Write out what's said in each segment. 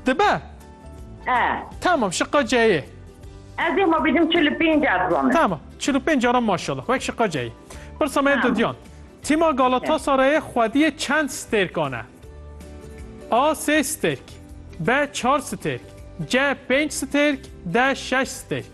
Dibe? E. Tamam şiqa ceyê. Ez ê ma bîdim çil û pênc e dizanim. Tamam çil û pênc caran maşallah wek şiqa ceyê. Pirsa me Tamam. didyan. Tîma Galatasarayê xwediyê çend stêrkan e? A. Sê stêrk B. Çar stêrk C. Pênc stêrk D. Şeş stêrk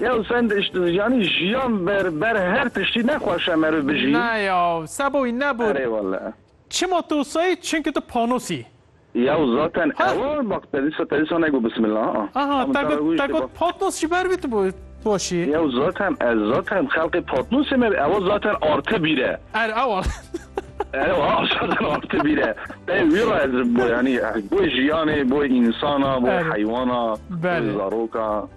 Ya sen yani jiyan ber ber her tiştî nexweşe meri bijî. Ne ya seboyî ne bor. Erê wele. Çima tu sayî çünkü tu panosî. Ya zaten ewa bak te dîsa te dîsa nego bismillah a. Aha te got te got patnos ji ber vî tu bo boşî. Ya zaten ez zaten xelqê patnosê me ewa zaten artı bîre. Er ewa. Ewa zaten artı bîre. Te wî ra ez bo yani bo jiyanê bo insana bo heywana bo zaroka.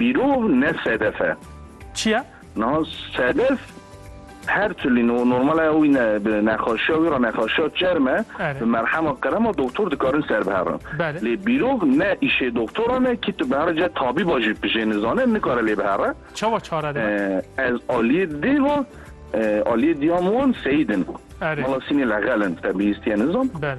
Bîrov ne sedef e. Çi ye? Niha sedef her tilî no normal e wî ne bi nexaşiya wî re nexaşiya çerm e Erê. bi merhema qirema doktor dikarin serbiherin. Belê. Lê bîrov ne îşê doktoran e kî tu biherî cih tabîba jî pijê nizane nikare lê bihere. Çawa çare dibe? Eh, Ez aliyê dê ve eh, aliyê diyam wan Seyîd in. Erê. Mala Sînê Lexel in te bihîstiye nizan. Belê.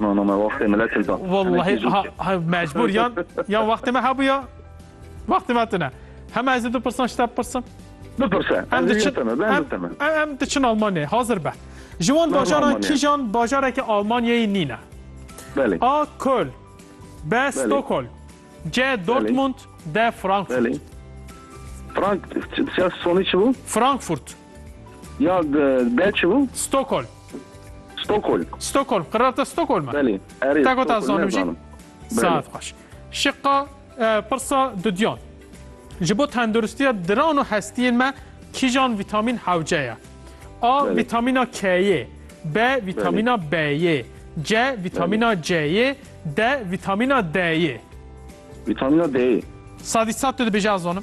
No no me wextê me leçil da. Wallahî ha mecbur yan yan wextê me hebûya wextê me tune. Hema ez ê du pirsan şte pirsim. Bipirse em em diçin Almanyayê hazir be. Ji wan bajaran kîjan bajarekî Almanyayê nîne. A Köln B Stockholm C Dortmund D Frankfurt. Frank, Frank, Frankfurt. Ya de çi bû? Stockholm. Stockholm. Stockholm. Qiraleta Stockholm. Belê. Erê. Ta gota zanim jî. Saet xweş. Şiqa pirsa dudyan. Ji bo tenduristiya diran û hestiyên me kîjan vîtamîn hewce ye? A. Vîtamîna K'yê B. Vîtamîna B'yê C. Vîtamîna C'yê D. Vîtamîna D'yê Vîtamîna D'yê. Sadî sat tu dibêjî ez zanim.